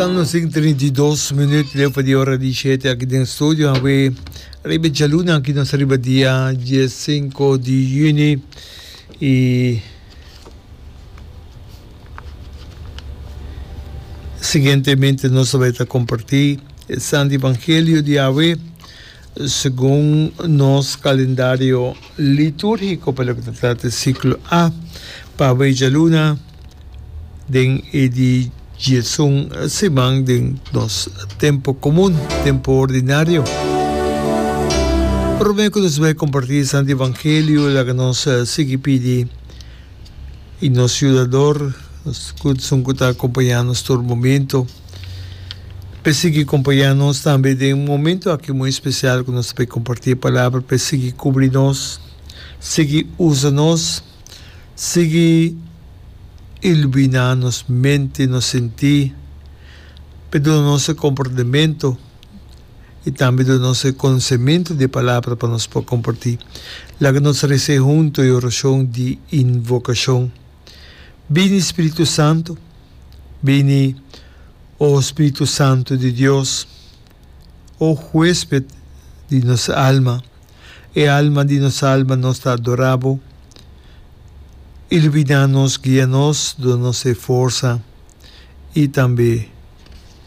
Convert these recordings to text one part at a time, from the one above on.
Salmo 132, minuut leu pa di ora di shete aki den studio a we riba jaluna aki nos riba dia 15 di juni i siguientemente nos ta bai ta comparti e santo evangelio di Yahweh Segun nos kalendario litúrgiko pa loke ta trata di siklo A, papia djaluna den e di djesun siman den nos tempu komun, tempu ordinario. Promé ku nos bai kompartí e santu evangelio, laga nos sigui pidi. I nos yudador, nos gudsun ku ta akompañá nos tur momentu, pa e sigui kompañá nos tambe den un momentu aki muy spesial ku nos ta por kompartí e palabra, pa e sigui kubri nos, sigui usa nos, sigui iluminá nos mente, nos sentí, pa e duna nos e komportamentu. i tambe do nos e konosementu di e palabra pa nos por kompartí. Laga nos res'é huntu e orashon di invokashon, Bini Spiritu Santu, bini, o Spiritu Santu di Dios, o huésped di nos alma, e alma di nos alma, nos ta adorá bo, iluminá nos, guia nos, duna nos e forsa i tambe.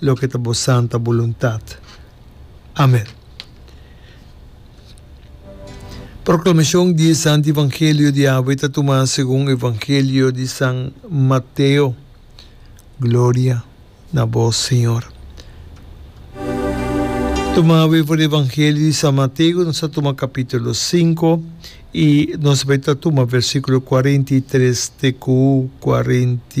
Loke ta bo santa buluntat. Amen. Proklamacion di e Santi Evangelio di awe ta tuma segun Evangelio di San Mateo. Gloria na bo, Señor. Tuma awe for di Evangelio di San Mateo, nos a tuma capítulo cinco y nos bai ta tuma versículo cuarenta y tres te cu cuarenta